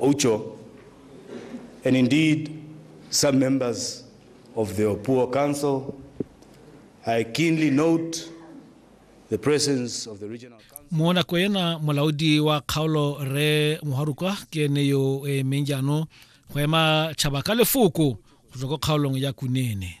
Oucho, and indeed some members of the Opuo Council. I keenly note the presence of the regional council. mo nako ena molaodi wa kgaolo re mogarukwa ke ene yo o emeng jaanong go ema tšhaba ka lefoko go tswa ko kgaolong ya kunene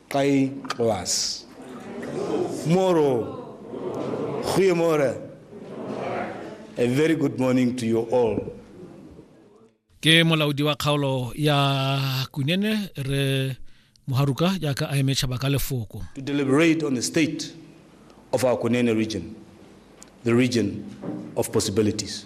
Qayqwas. Moro. Goeiemôre. A very good morning to you all. Ke molaodi wa kgaolo ya Kunene re Moharuka jaaka a eme tšhaba ka lefoko. To deliberate on the state of our Kunene region, the region of possibilities.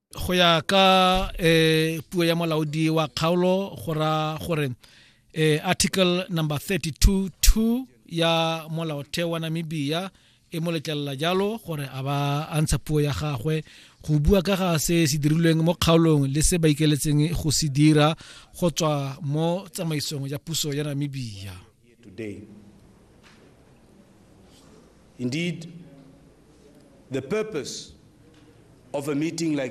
go ya ka eh puo ya molaodi wa kgaolo go ra gore eh article number 32 2 ya molaotheo wa Namibia e mo letlelela jalo gore a ba a ntsha puo ya gagwe go bua ka ga se se dirilweng mo kgaolong le se ba ikeletseng go se dira go tswa mo tsamaisong ya puso ya Namibia today indeed the purpose of a meeting like